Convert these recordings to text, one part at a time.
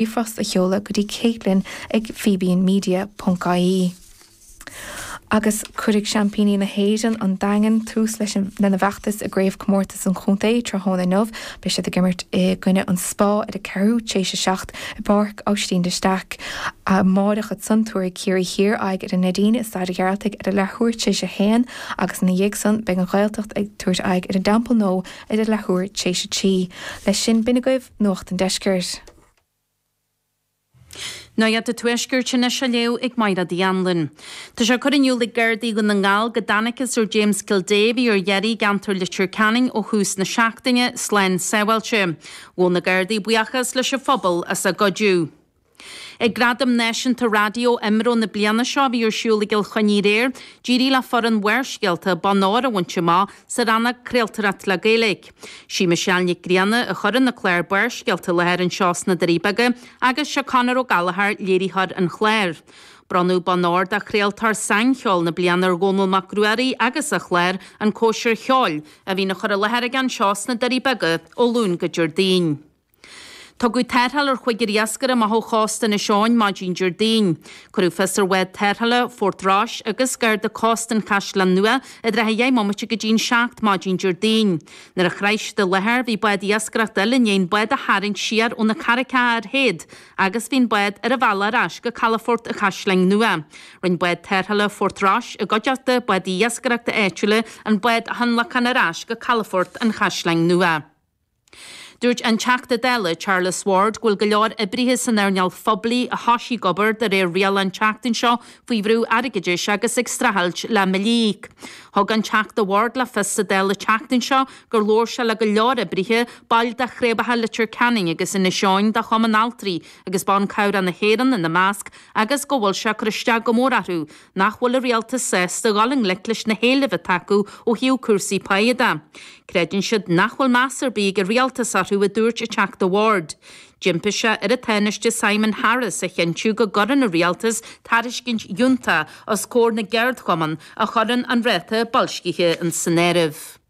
ríomhphost a sheoladh go dtí Caitlín ag fíbínmedia ponc ie Agus cuirfidh seaimpíní na hÉireann, an Daingean, tús leis an lena bhfeachtas i gCraobhchomórtas an Chontae tráthnóna inniu. Beidh siad ag imirt i gcoinne An Spá ar a ceathrú t'éis a 7 i bPáirc Auisín de Staic. Amáireach ansan tabharfaidh Ciarraí Thiar aghaidh ar an Neidín i Staid a' Ghearaltaigh ar a leathuair t'éis a haon agus ina dhiaidh san beidh An Ghaeltacht ag tabhairt aghaidh ar an dTeampall Nua ar a leathuair t'éis a trí. Leis sin, b'in agaibh Nuacht an Deiscirt. Nuacht a Tuaiscirt anois á léamh ag Máire Ní Anluain. Tá sé á chur in iúl ag Gardaí Dhún na nGall go dtáinig an fear James Kildea a bhí ar iarraidh i gceantar Leitir Ceanainn ó thús na seachtaine slán sábháilte. Ghabh na Gardaí buíochas leis an phobal as a gcuidiú. Ag Gradaim Náisiúnta Raidió Imro na bliana seo a bhí ar siúl i gCill Chainnigh aréir, d'éirigh le foireann Bharrscéalta bonn óir a bhaint amach sa rannóg Craoltóireacht le Gaeilge. Sí Michelle Nic Grianna a chuireann na cláir Barrscéalta i láthair anseo sna Doirí Beaga agus seo Conor Ó Gallchóir, léiritheoir an chláir. Bronnadh Bonn Óir do Chraoltóir Saincheoil na Bliana ar Dhónall Mac Ruairí agus a chlár, An Cóisir Cheoil, a bhíonn á chur i láthair aige anseo sna Doirí Beaga ó Luan go Déardaoin. Tugadh tarrtháil ar chúigear iascaire amach ó chósta Inis Eoghain maidin Déardaoin. Cuireadh fios ar bhád tarrthála Phort Rois agus Garda Cósta an Chaisleáin Nua i dtrátha a deich mbomaite go dtí an seacht maidin Déardaoin. Nuair a shroich siad an láthair bhí bád iascaireachta eile i ndiaidh an bád a tharraingt siar ó na carraigeacha ar théad agus bhí an bád ar a bhealach ar ais go calafort an Chaisleáin Nua. Rinne bád tarrthála Phort Rois i gcuideachta bádaí iascaireachta áitiúla an bád a thionlacan ar ais go calafort an Chaisleáin Nua. Dúirt an Teachta Dála Charles Ward go bhfuil go leor oibrithe san earnáil phoiblí a thosaigh obair de réir riail an tseachtain seo faoi bhrú airgeadais agus ag streachailt le mbillí. Thug an Teachta Ward le fios sa Dáil an tseachtain seo gur labhair sé le go leor oibrithe, baill de chraobhacha Leitir Ceanainn agus Inis Eoghain de Chumann Altraí agus Ban Cabhracha na hÉireann ina measc, agus go bhfuil sé curtha isteach go mór orthu nach bhfuil an rialtas sásta dhul i ngleic leis na héilimh atá acu ó thaobh cúrsaí páidhe de. Creideann siad nach bhfuil meas ar bith ag an rialtas orthu, a dúirt an Teachta Ward. D'impigh sé ar an Tánaiste Simon Harris a chinntiú go gcuireann an rialtas tairiscint fhiúntach os comhair na gceardchumann a chuireann an ráta boilscithe san áireamh.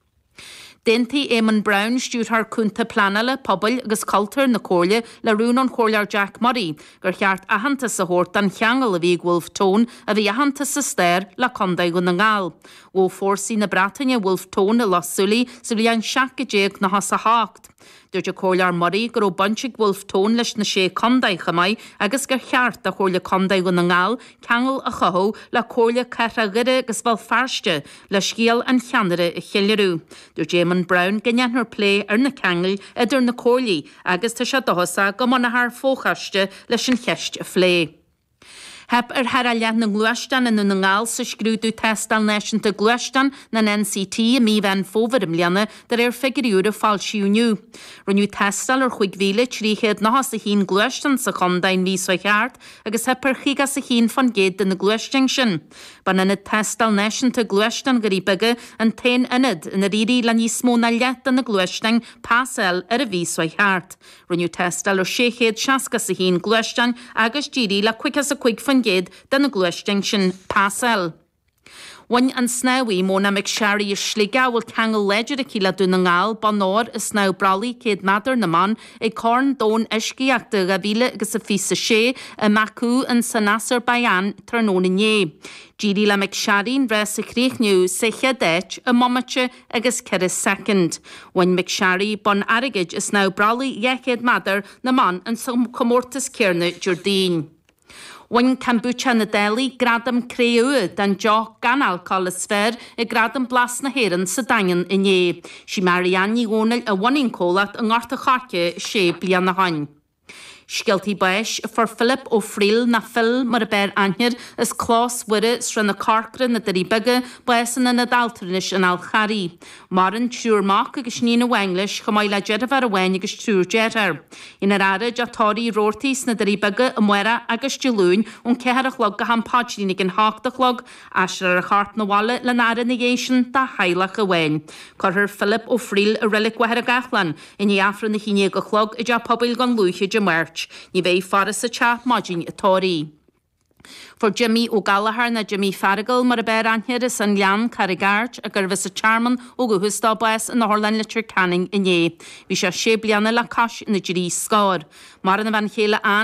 D'aontaigh Eamonn Brown, Stiúrthóir Cúnta Pleanála, Pobail agus Cultúir na Comhairle, le rún ón Chomhairleoir Jack Murray gur cheart aitheantas a thabhairt don cheangal a bhí ag Wolfe Tone, a bhí aitheanta sa stair, le Contae Dhún na nGall. Ghabh fórsaí na Breataine Wolfe Tone i Loch Súilí sa bhliain 1798. Dúirt an Comhairleoir Murray go raibh baint ag Wolfe Tone leis na Sé Contae chomh maith agus gur cheart do Chomhairle Contae Dhún na nGall ceangal a chothú le Comhairle Cathrach Dhoire agus Bhéal Feirste le scéal an cheannaire a cheiliúradh. Dúirt Éamonn Brown go ndéanfar plé ar na ceangail idir na comhairlí agus tá sé dóchasach go mbunófar fochoiste leis an cheist a phlé. Theip ar thar a leath na ngluaisteán i nDún na nGall sa scrúdú Tástáil Náisiúnta Gluaisteán, nó an NCT, i mí Mheán Fómhair i mbliana, de réir figiúirí úr a foilsíodh inniu. Rinneadh tástáil ar chúig mhíle, trí chéad nocha is a haon, gluaisteán sa chontae an mhí seo thart agus theip ar chaoga is a haon fán gcéad de na gluaisteáin sin. B'an Ionad Tástáil Náisiúnta Gluaisteán Dhoirí Beaga an t-aon ionad inar éirigh le níos mó ná leath de na gluaisteáin pas a fháil ar an mhí seo thart. Rinneadh tástáil ar 661 gluaisteán agus d'éirigh le 55% de na gluaisteáin sin pas a fháil. Bhain an snámhaí, Mona McSharry as Sligeach, a bhfuil ceangal láidir aici le Dún na nGall, bonn óir i snámh brollaigh 100 meadar na mban ag Corn Domhain Uiscíochta 2026 i mBaku in san Asarbaiseáin tráthnóna inné. D'éirigh le McSharry an rás a chríochnú sa chéad áit i mbomaite agus 4 soicind. Bhain McSharry bonn airgid i snámh brollaigh 200 meadar na mban in sa chomórtas céarna Déardaoin. Bhain Kombucha na Dálaigh gradam cré-umha don deoch gan alcól is fearr ag gradaim Blas na hÉireann sa Daingean inné. Sí Marianne Ní Dhomhnaill a bhunaigh an comhlacht i nGort a Choirce sé bliana ó shoin. Scéaltaí Báis Fuair Philip Ó Fríl, nó Phil mar a b'fhearr aithne air as Clós Mhuire, Srath na Corcra, Na Doirí Beaga, bás in Ionad Altranais an Fháil Charraigh. Maireann triúr mac agus iníon amháin leis, chomh maith le deirféar amháin agus triúr dearthár. Déanfar a fhaire i dTeach Tórraimh Roarty sna Doirí Beaga Amárach agus Dé Luain ón ceathair a chlog go ham paidrín ag an hocht a chlog, aistreofar a chorp na bhaile lena fhaire ina dhiaidh sin dá theaghlach amháin. Cuirfear Philip Ó Fríl i Reilig Mhachaire Gathlán. I ndiaidh Aifreann a haon déag a chlog i dTeach Pobail Dhún Lúiche Dé Máirt, ní bheidh faire sa teach maidin an tórraimh. Fuair Jimmy Ó Gallchóir, nó Jimmy Feargal mar ab fhearr aithne air, as an nGleann, Carraig Airt, a gurbh as an Tearmann ó dhúchas dó, bás in Otharlann Leitir Ceanainn inné. Bhí sé sé bliana le cois na dtrí scór. Maireann a bhean chéile Anne.